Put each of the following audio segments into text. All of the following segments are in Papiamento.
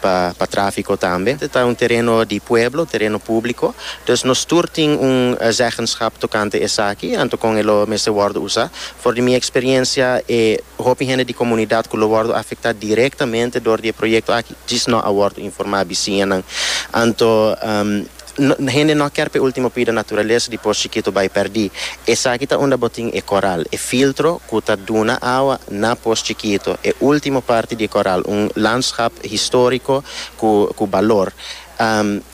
pa trafiko tambe. E ta un tereno di pueblo, tereno públiko, dus nos tur tin un zeggenschap tokante esaki, anto kon e lo mester wòrdu usá. For di mi eksperiencia, e hopi hende di komunidat ku lo wòrdu afektá direktamente dor di e proyekto aki djis nò a wòrdu informá bisiñanan. Anto. Hende no a ker pa e ultimo pida naturalesa di por chikito bai perdi. Esaki ta unda bo tin e koral, e filtro ku ta duna awa na por chikito, e ultimo parti di e koral, un landschap historico ku balor.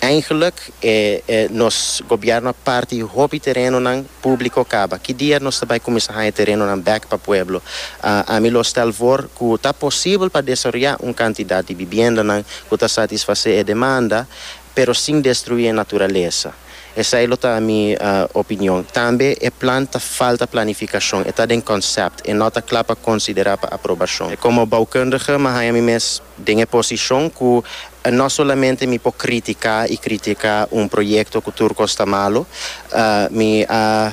Eigenlik e nos gobièrnu a parti hopi terenonan públiko kaba. Ki dia nos ta bai kuminsá haña terenonan bèk pa pueblo? Ami lo stèl for ku ta posibel pa desaroyá un kantidat di bibiendanan ku ta satisfasé e demanda. pero sin destruí e naturalesa. Esei lo ta mi opinion. Tambe e plan ta falta planifikashon, e ta den konsèpt, e no ta kla pa konsiderá pa aprobashon. Komo boukundige mi haña mi mes den e posishon ku no solamente mi por kritiká i kritiká un proyekto ku tur kos ta malu, mi a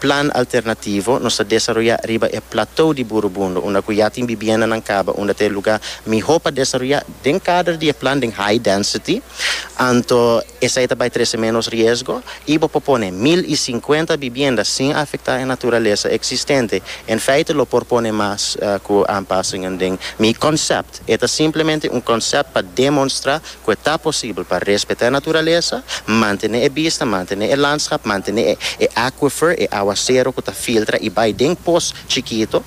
Plan alternativo nos ta desaroyá riba e platou di Burubundo, unda ku ya tin bibiendanan kaba, unda ta e lugá mihó pa desaroyá. Den kader di e plan den high density, anto esei ta bai trese ménos riesgo i bo por pone mil i sinkuenta bibienda sin afektá e naturalesa eksistente. En feite lo por pone mas ku aanpasingen den mi konsèpt. E ta simplemente un konsèpt pa demonstrá ku e ta posibel pa respetá e naturalesa, mantené e bista, mantené e landschap, mantené e e aquifer, e awasero ku ta filtra i bai den pos chikito,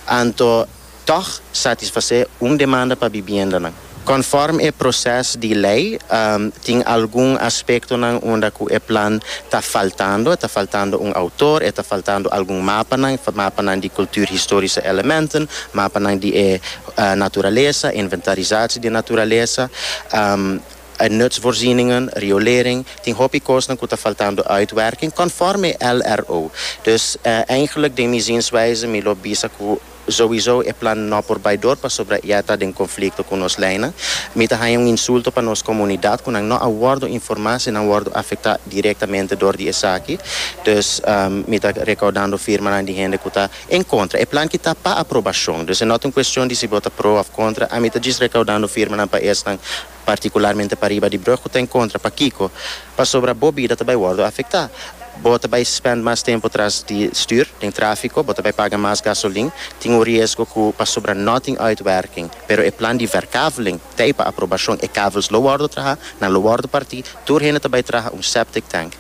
anto tòg satisfasé un demanda pa bibiendanan. Kònfòrm e proses di lei, tin algun aspektonan unda ku e plan ta faltando, e ta faltando un outor, e ta faltando algun mapanan, mapanan di kulturhistorische elementen, mapanan di e Naturalesa, inventarisatie di naturalesa, nutsvoorzieningen, riolering, tin hopi kosnan ku ta faltando uitwerking konforme LRO. Dus eigenlijk den mi zienswijze mi lo bisa ku souiso e plan no por bai dor pasobra ya ta den konflikto ku nos leinan. Mi ta haña un insulto pa nos komunidat ku nan no a wòrdu informá si nan wòrdu afektá direktamente dor di esaki. Dus mi ta rekaudando firmanan di hende ku ta. En kontra, e plan ki ta pa aprobashon. Dus e no ta un kuestion di si bo ta pro òf kontra, ami ta djis rekaudando firmanan pa esnan, partikularmente pariba di Brug ku ta en kontra. Pakiko? Pasobra bo bida ta bai wòrdu afektá. Bo ta bai spènt mas tempu tras di stür den tráfiko, bo ta bai paga mas gasolin, tin un riesgo ku pasobra no tin uitwerking. Pero e plan di verkaveling t'ei pa aprobashon, e kavels lo wòrdu trahá, nan lo wòrdu partí, tur hende ta bai traha un septic tank.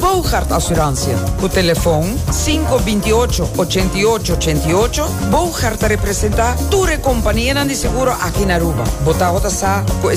Boogaard Assurantia, ku telefon sinku binti ocho, ochenta i ocho, ochenta i ocho, Boogaard ta representá tur e kompanianan di seguro aki na Aruba. Bo tabata sa ku e